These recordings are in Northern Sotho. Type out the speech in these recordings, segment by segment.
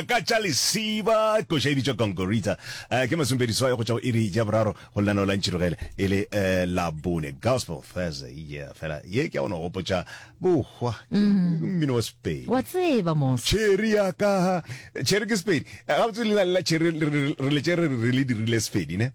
ka tša lesiba koša e bitšwa gongorita uh, ke masumpedi swai go tša go iri ja boraro go lenaneo la ntšhirogele e le uh, labone gospel thursday yeah, fela ye ke ya gona gopotša bohwa mmino wa sepedi wa tseba mos cherry ya ka cherry ke sepedi gabotse leina le la cherry re letse re le dirile sepedi ne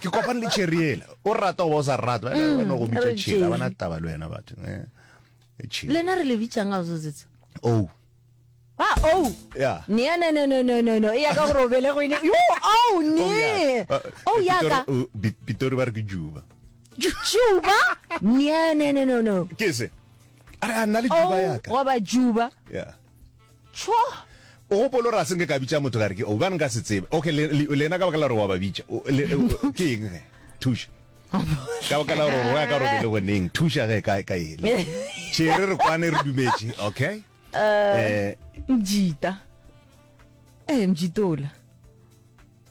ke kopane le cherry ela o rata o ba o sa rata mm, wena go bitsa cherry a bana taba le wena batho eh, eh, lena re le bitsang ga o setsetse oh Ah, oh. Yeah. Nia, no, no, no, no, no, no. Ia ka gore o bele go ine. Yo, oh, ne. Oh, oh ya ka. Uh, Pitori ba re ke Juba. Juba? Nia, no, no, no, no. Ke se. Are a nna le Juba ya ka. Oh, wa ba Juba. Yeah. Tšhwo! O gopola gore a se nke ka bitša motho ka re ke o bane nka se tsebe. Okay, le, le, lena ka baka la gore wa ba bitša. O, le, o, ke eng ge? Thuša. Ka baka la gore roya ka robele goneng. Thuša ge ka, ka ele. Tšhere re kwane re dumetše. Okay. Eh, Mjita. Eh, Mjitola.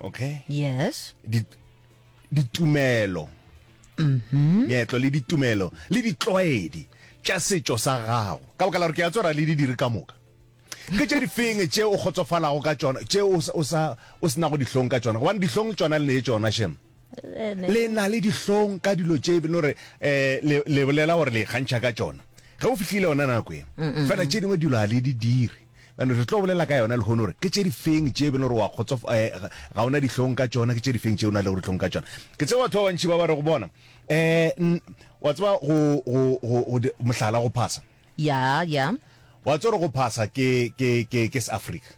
okay yes ditumelo mm-hmm. meetlo le ditumelo le ditlwaedi tša setšo sa gago ka baka la gore ke a tsora le di dire ka moka ke tše difeng tše o kgotsofalago ka tšona tše o se nago dihlong ka tšona gobane dihlong tšona le ne tšona shem le na le dihlong ka dilo tše bene gore um le bolela gore le kgantšha ka tšona ge o fitlhile yona nako e fela tše dingwe dilo a le di dire Bjale re tlo bolela ka yona lehono gore ke tše difeng tše e bile gore wa kgotsof-, eh, ga, ga o na dihlong ka tšona, ke tše difeng tše o na lego dihlong ka tšona. Ke tseba batho ba bantši ba ba rego, Bona, eh, n, wa tseba, go, go, go, go di, mohlala, go phasa. Ya, ya. Wa tseba gore go phasa ke, ke, ke, ke Seafrika.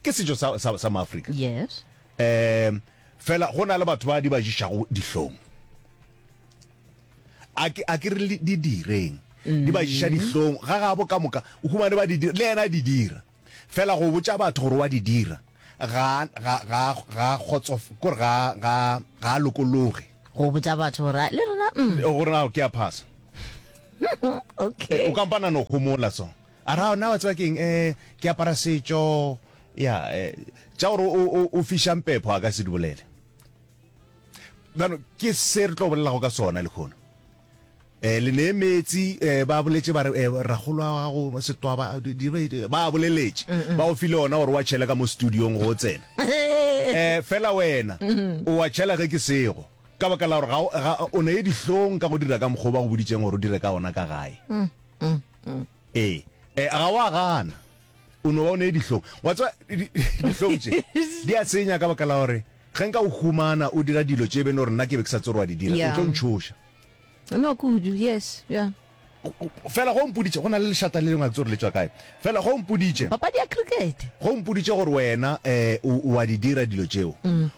Ke setšo sa, sa, sa Maafrika. Yes. Um, fela go na le batho ba di ba jišago dihlong. A ke, a ke re di direng. Di ba jiša mm-hmm. dihlong, ga gabo ka moka, o humane ba di dira, le yena di dira. Fela go botša batho gore wa di dira, ga, ga, ga, ga kgotsof, kore ga, ga, ga lokologe. Go botša batho gore, le rona, mm. Gore na ke a phasa. okay. O kampana no homola so. A ra na wa tseba keng eh ke apara setšo ya eh tša gore o o o fišang pepho a ka se di bolele bjalo ke se re tlo bolelago ka sona lekhono eh le ne metsi eh ba boletse ba re eh ragolo wa gago setwaba di ba boleletše ba o file ona gore wa tšhela ka mo studio go tsena eh fela wena o wa tšhela ge ke sego ka baka la gore ga o ne dihlong ka go dira ka mokgoba go boditseng gore o dire ka ona ka gae mm. ee eh, ga wa gana o no ba o ne dihlong wa tswa dihlong tse di a tsenya ka baka la gore ge nka o humana o dira dilo tse e bene gore nna ke be ke sa tsorwa di dira o tlo ntshoša no kudu yes yeah fela go mpoditse go na le lešata le lengwe a tsore le tswa kae fela go mpoditse papadi ya cricket go mpoditse gore wena um wa di dira dilo tseo mm.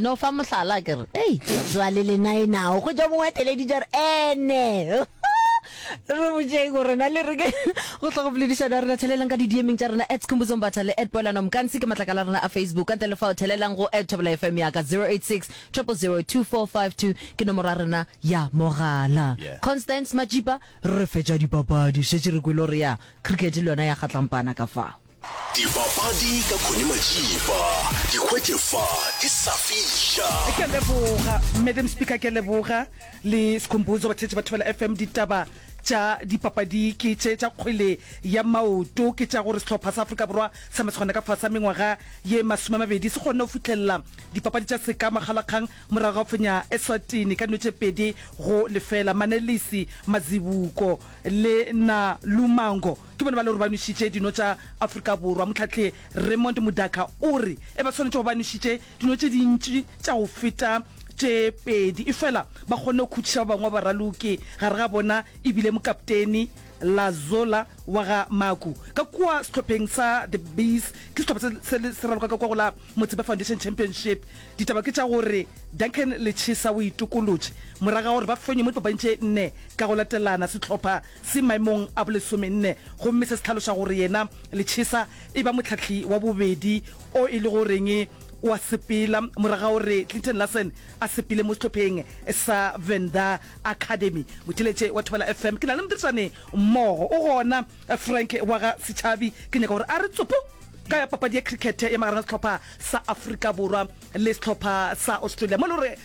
no fa mohlala ke re ei jwale lena e nao go ja mongwe a teleditša re ene re botšeng gore na le reke go tla go boledišana rena thelelang ka di-dmeng tša rena at khumbuzo mbatha le at poelano mkansi ke matlakala a rena a facebook ka ntle le fao thelelang go at thobela fm yaka 086 002452 ke nomoro ya rena ya mogala Yeah. constance majipa re fetša dipapadi šetše re kwele gore ya cricket le yona ya kgatlampana ka fao Dipapadi ka Connie Majiba. Ke hwetše fa ke sa fiša. Ke leboga madam speaker ke leboga le skhumbuzo batheetši ba thobela fm ditaba tša dipapadi ke tše tša kgwele ya maoto ke tša gore sehlopha sa afrika borwa sa masegona ka fasa mengwaga ye masome a mabedi se kgonne go fitlhelela dipapadi tša seka makgalakgang morago ga fenya eswatini ka nwetše pedi go lefela manelisi mazibuko le na lumango Ke bona ba le gore ba nwešitše dino tša Afrika Borwa. Mohlahle Raymond Mudaka o re e ba swanetše go ba nwešitše dino tše dintši tša go feta tše pedi efela ba kgonne go khutšiša ba bangwe ba baraloki, gare ga bona e bile mokapteni Lazola wa ga Maku. Ka kua sehlopheng sa The Bees, ke sehlopha se se le se raloka ka kua go la Motsepe Foundation Championship, ditaba ke tša gore Duncan Lechisa o itokolotše morago ga gore ba fenye mo dipapading tše nne ka go latelana. Sehlopha se maemong a bolesomenne gomme se se tlhaloša gore yena Lechesa e ba mohlahli wa bobedi o e lego goreng wa sepela morago ga gore Clinton Larsen a sepele mo sehlopheng sa Venda Academy. Motheletše wa Thobela FM ke na le modirišani mmogo o gona, Frank wa ga Setšhabi. Ke nyaka gore a re tsopo ka papadi ya cricket ya magareng ga sehlopha sa Afrika Borwa le sehlopha sa Australia mo e lego gore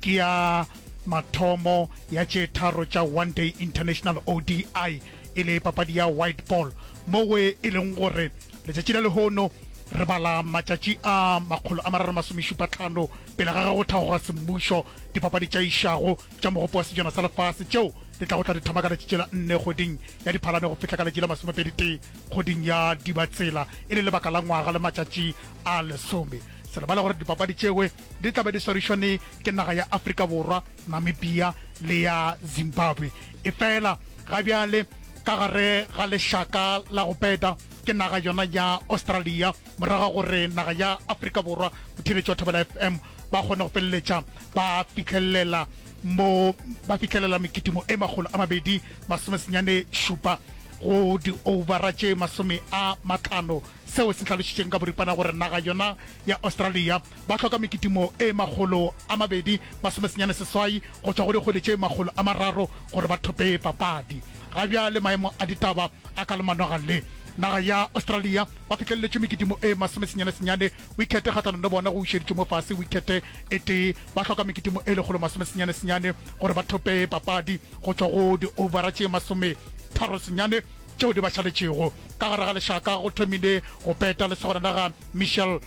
Ke ya mathomo ya tše tharo tša One Day International, ODI, e le papadi ya white ball, moo e leng gore letšatši la lehono re bala matšatši a makgolo a mararo masomešupatlhano pele ga ge go thagoga semmušo dipapadi tša išago tša mogopo wa sejana sa lefase tšeo di tlago tla di thoma ka letšatši la nne kgweding ya diphalane go fihla ka letšatši la masomepedi-tee kgweding ya dibatsela e le lebaka la ngwaga le matšatši a lesome se lebale gore dipapadi tšewe di tla be di swarišwane ke naga ya Afrika Borwa, Namibia le ya Zimbabwe. Efela ga bjale ka gare ga lešaka la go peta ke naga yona ya Australia morago ga gore naga ya Afrika Borwa, botheeletši wa Thobela FM, ba kgone go feleletša ba fihlellela mo ba fihlellela mekitimo e makgolo a mabedi masome senyane šupa go di-overa tše masome a matlhano seo se hlalošitšweng ka boripana gore naga yona ya Australia ba hloka mekitimo e makgolo a mabedi masomesenyane seswai go tšwa go dikgwedi tše makgolo a mararo gore ba thope papadi. Ga bjale maemo a ditaba a ka le manoga le naga ya Australia ba fihlelletše mekitimo e masomesenyane senyane wikhete kgahlanong le bona go wišeditšwe mo fase wikhete e tee ba hloka mekitimo e lekgolo masomesenyane senyane gore ba thope papadi go tšwa go di-overa tše masometharo senyane tšeo di ba šaletšego. Ka gare ga lešaka go thomile go peta lesogana la ga Michel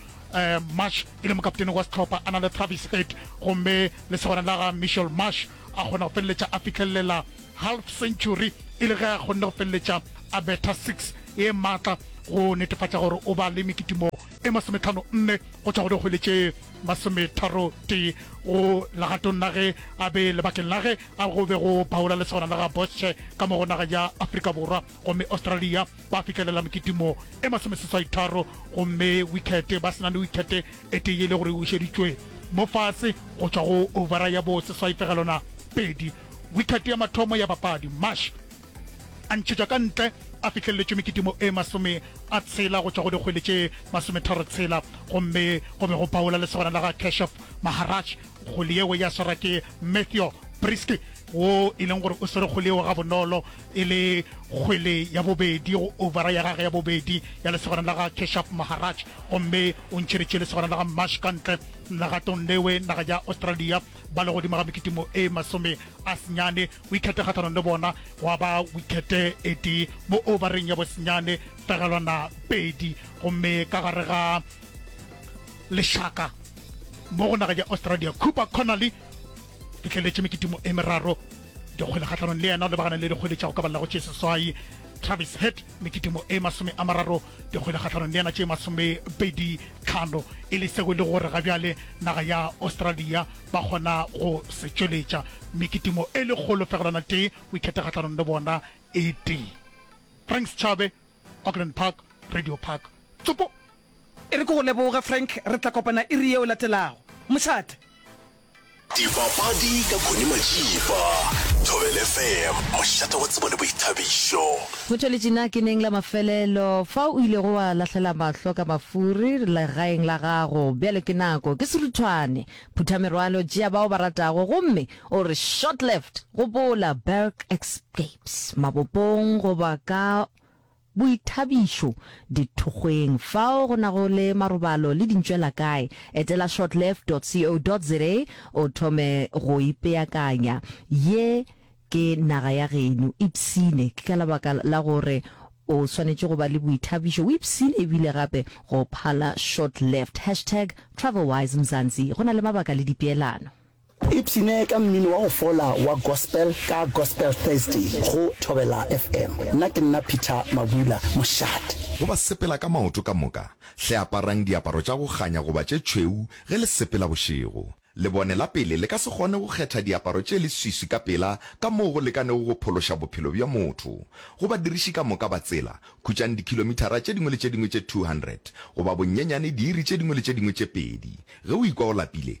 Marsh e le mokaptene wa sehlopha a na le Travis Head gomme lesogana la ga Michel Marsh a kgona go feleletša a fihlelelela half century e le ge a kgonne go feleletša a betha six e maatla go netefatša gore o ba le mekitimo e masometlhano nne go tšwa go di kgwele tše masometharotee go legatong la ge a be lebakeng la ge a go be go phaola lesogana la ga Bosche ka mo go naga ya Afrika Borwa gomme Australia ba fihlelela mekitimo e masomeseswaitharo gomme wikhete ba sena le wikhete e tee e le gore e bušeditšwe mo fase go tšwa go ovara ya bo seswaipegelona pedi wikhete ya mathomo ya papadi Marsh a ntšhetšwa ka ntle a fihleleletšwe mekitimo e masome a tshela go tšwa go dikgwele tše masometharo tshela, gomme go be go paola lesogana la ga Keshof Maharaj kgole yeo ya swara ke Mathew Brisky, wo e leng gore o swere kgole yeo gabonolo e le kgwele ya bobedi go ovara ya gage ya bobedi ya lesogana la ga Keshof Maharaj, gomme o ntšheditše lesogana la ga Marsh ka ntle legatong lewe naga ya Australia. ba le godimo ga mekitimo e masome a senyane, o ikhete kgahlanong le bona, gwa ba wikhete e tee mo ovareng ya bosenyane, pegelwana pedi, gomme ka gare ga lešaka mo go naga ya Australia, Cooper Connolly fihleletše mekitimo e meraro dikgwele kgahlanong le yena, lebagana le dikgwele tša go ka ballago tše seswai, Travis Head mekitimo e masome a mararo di kgwele kgatlhanong le yena tše masomepedi tlhano e le seo e le gore ga bjale naga ya australia ba kgona go se tšweletša mme ke timo e le kgolo fegelwana tee o ikgethe kgatlhanong le bona e tee frank setšhabe auckland park radio park tsopo e re ke go leboge frank re tla kopana iri yeo latelago mošate Dipapadi ka Connie Majiba, Thobela FM, mošate wa tsebo le boithabišo. Go tšweletše na ke neng la mafelelo fa o ilego wa lahlela mahlo ka mafuri legaeng la gago? Bjale ke nako, ke seruthwane. Phutha merwalo, tšea bao ba ratago gomme o re short left! Gopola, Berg Escapes, Mabopong goba ka. Boithabišo, Dithokgweng fao go nago le marobalo le dintšwela kae? Etela shortlife dot co dot za o thome go ipeakanya. Ye ke naga ya geno. Ipshine. Ke ka lebaka la gore o swanetše go ba le boithabišo. O ipshine ebile gape go phala shortlife. Hashtag TravelWiseMzansi Go na le mabaka le dipeelano. Ipshine ka mmino wa go fola wa gospel ka Gospel Thursday go Thobela FM. Nna ke nna Peter Mabula mošate. Go ba sepela ka maoto ka moka, hle aparang diaparo tša go kganya goba tše tšhweu ge le sepela bošego. Lebone la pele le ka se kgone go kgetha diaparo tše leswiswi ka pela ka moo go lekanego go phološa bophelo bja motho. Go badiriši ka moka ba tsela, khutšang dikhilomithara tše dingwe le tše dingwe tše 200, goba bonyenyane diiri tše dingwe le tše dingwe tše pedi. Ge o ikwa o lapile,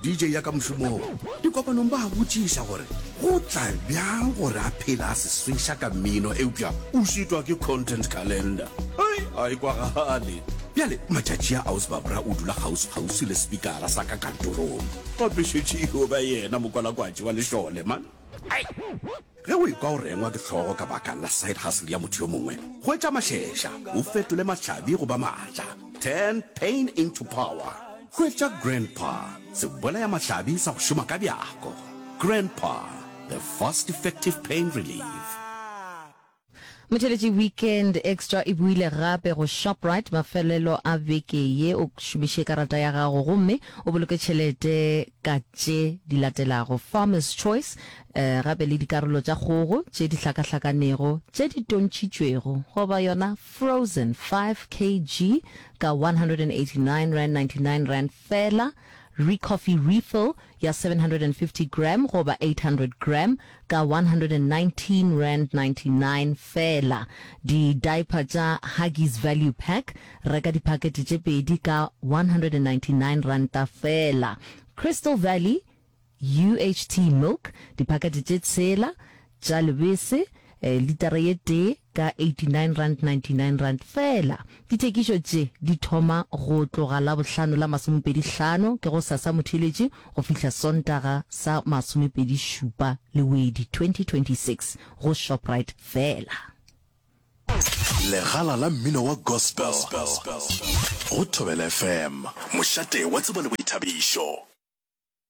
DJ ya ka mošomong, dikopanong ba a botšiša gore go tla bjang gore a phele a se swiša ka mmino eupša o šitwa ke content calendar. Hei, ga e kwagale. Bjale matšatši a Ausba bra o dula kgauswi-kgauswi le sepikara sa ka kantorong. Gape šetše e yo ba yena mokwalakwatši wa lešole man. Hei! Ge o ikwa o rengwa ke hlogo ka baka la side hustle ya motho yo mongwe, hwetša mašeša o fetole mahlabi go ba matla. Turn pain into power. Hwetša Grandpa, sebolaya mahlabi sa go šoma ka bjako. Grandpa, the fast effective pain relief. Motheletši Weekend Extra e buile gape go Shoprite mafelelo a beke ye o šomiše karata ya gago gomme o boloke tšhelete ka tše di latelago, Farmers Choice, eh, gape le dikarolo tša kgogo tše di hlakahlakanego tše di tontšitšwego goba yona frozen 5 kg ka R189.99 fela, Recoffee Refill ya 750 gram goba 800 gram ka R119.99 feela. Di-diaper tša Huggies Value Pack, reka diphakete tše pedi ka R199 feela. Crystal Valley UHT Milk, diphakete tše tshela tša lebese, litara ye tee, ka R89.99 feela. Dithekišo tše di thoma go tloga Labohlano la masomepedi hlano, ke go sa sa Motheeletši, go fihla Sontaga sa masomepedi šupa Lewedi 2026, go Shoprite feela. Legala la mmino wa gospel go Thobela FM, mošate wa tsebo le boithabišo.